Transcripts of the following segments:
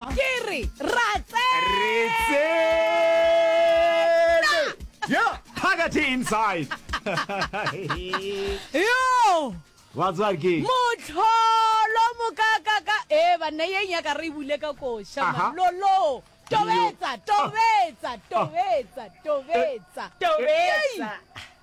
Ke re, ra tsena! Re tsene! Yo, phakathi inside. Yo! Batswari ke. Motlholo mokakaka. E banna ye nyaka re bule ka koša man. Lolo. Tobetsa, tobetsa, tobetsa, tobetsa. Tobetsa.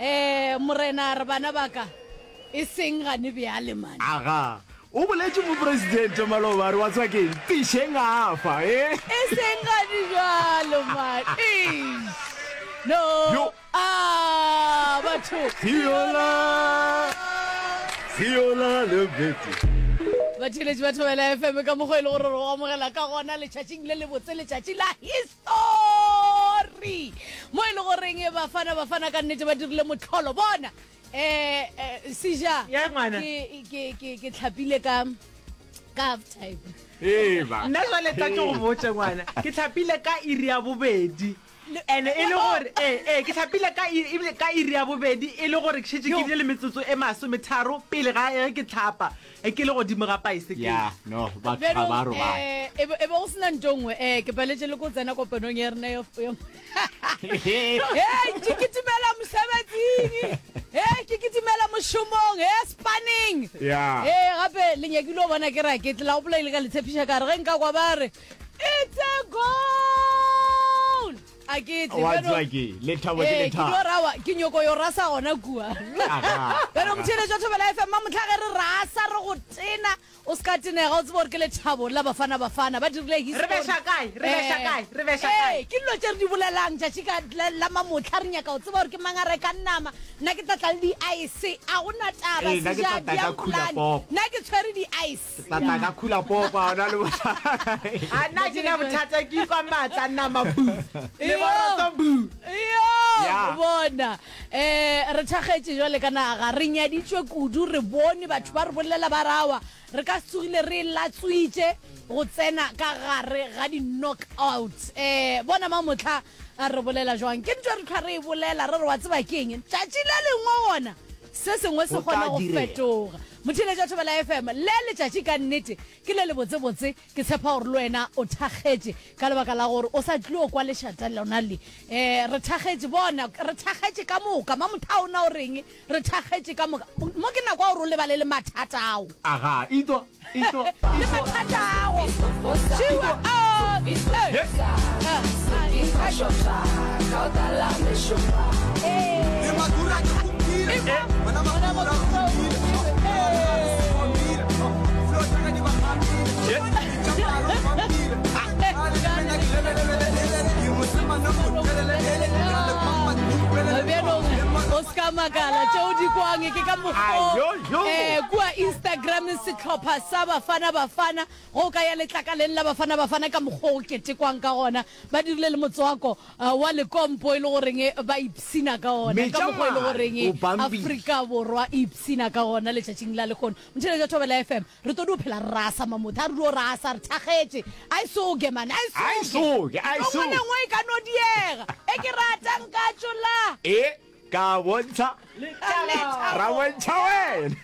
Ee, Morena, a re bana ba ka, e seng gane bjale, man. Aga, o boletše Mopresidente Maloba, a re, wa tseba ke'ng, Pišeng a fa, ee. E seng gane bjalo, man. Eish! No! Yo! A, batho! Siola! Siola le Betty! Batheeletši ba Thobela FM ka mokgwa e le gore re go amogela ka gona letšatšing le lebotse, letšatši la History. Thori! Mo e le goreng Bafana Bafana ka nnete ba dirile motlholo. Bona! Eh, eh, Sija, Ya, ngwana. ke, ke, ke, ke tlhapile ka, ka half time. Eba. nna jale tla ke go botse ngwana ke tlhapile ka iri ya bobedi and e le gore ee ee ke tlhapile ka i- ebile ka iri ya bobedi e le gore ke šetse ke Yo. bile le metsotso e masometharo pele ga ge ke tlhapa e ke le godimo ga paesekele ya no batho ga Berong, ba robala eh, e be e be go sena nto nngwe um ke paletse le ko tsena kopanong ya rena ya- ya- Hey, ke kitimela mosebetsing hey, ke kitimela mošomong hey, spanning Yeah. hey, gape le nyakile o bona ke ra ke tlela gopola ile ka le tshepiša ka re ge nka kwa ba re it's a goal A ke tle, Wa bjalo- tseba ke, lethabo ke Ee, ke lethabo. dio rawa, ke nyoko yo rasa gona kua. Aga, Bjalo aga. motheeletši wa Thobela FM a motlha ge re rasa re go tena o se ka tenega o tsebe gore ke lethabo la bafana bafana ba dirile history. Re beša kae? Re beša Eh, kae? Re beša eh, kae? ke dilo tše re di bolelang tšatši ka la- la mamotlha re nyaka go tseba gore ke mang a rekang nama nna ke tla tla le di-ice a gona taba Ee, nna ke tla tla ka khula pop. nna ke tshwere di-ice Setata ka khula popa ona le bothata. A nna ke na bothata ke kwa matla nama bu. Le boroto bu. Yo bona. Eh re thagetše jwale kana ga re nyaditswe kudu re bone batho ba re bolela ba rawa. Re ka tsogile re latswitše go tsena ka gare ga di knock out. Eh bona ma motla a re bolela jwang. Ke ntwa re tlhwa re e bolela re re wa tseba keng. Tšatši le lengwe gona se sengwe se kgona go fetoga. Mothiletša o thobela FM, le letšatši ka nnete ke le lebotsebotse, ke tshepa gore le wena o thakgetše ka lebaka la gore o sa tlio kwa lešata lona le. Eh, re thakgetše, bona, re thakgetše ka moka, Mamothaona o reng, re thakgetše ka moka, mo ke nako ya gore o lebale le mathata ao. Aga, itwa, itwa, itwa. Le mathata ago, šiwa, oh, eh, eh, eh. setlhopha sa bafana bafana go ka ya letlakaleng la bafana bafana ka mokgwa o ketekwang ka gona Ba dirile le motswako wa lekompo e le goreng ba ipshina ka ona, ka mokgwa e le goreng Afrika Borwa e ipshina ka ona letšatšing la lekgono. Motšheletši wa Thobela FM, re todi o phela re rasa mamotha, a re dio rasa, re thakgetše. Aisoge man, aisoge! Nto nngwe le nngwe e ka no diega, e ke rata nka tšolla. E ka bontšha, ra bontšha wena.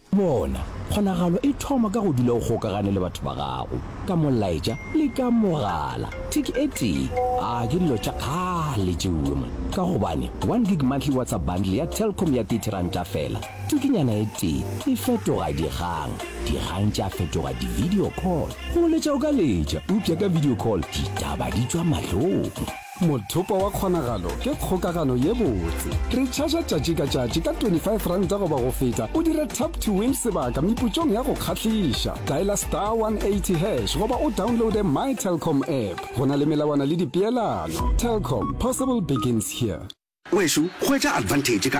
Bona, kgonagalo e thoma ka go dula o gokagane le batho ba gago, ka molaetša le ka mogala. Tick e tee, a ke dilo tša kgale tšeuwe mo, ka gobane one gig monthly WhatsApp bundle ya Telkom ya thirty ranta fela. Tikinyana e tee e fetoga dikgang, dikgang tša fetoga di-video call. Go letša o ka letša, eupša ka video call ditaba di tšwa mahlong. Mothopo wa Kgonagalo ke kgokagano ye botse. Re tšhaša tšatši ka tšatši ka 25 ranta goba go feta o dire tap to win sebaka meputšong ya go kgahliša. Dialer star 180 hash goba o downloade My Telkom app. Go na le melawana le dipeelano. Telkom, possible begins here. Wešo, hwetša advantage ka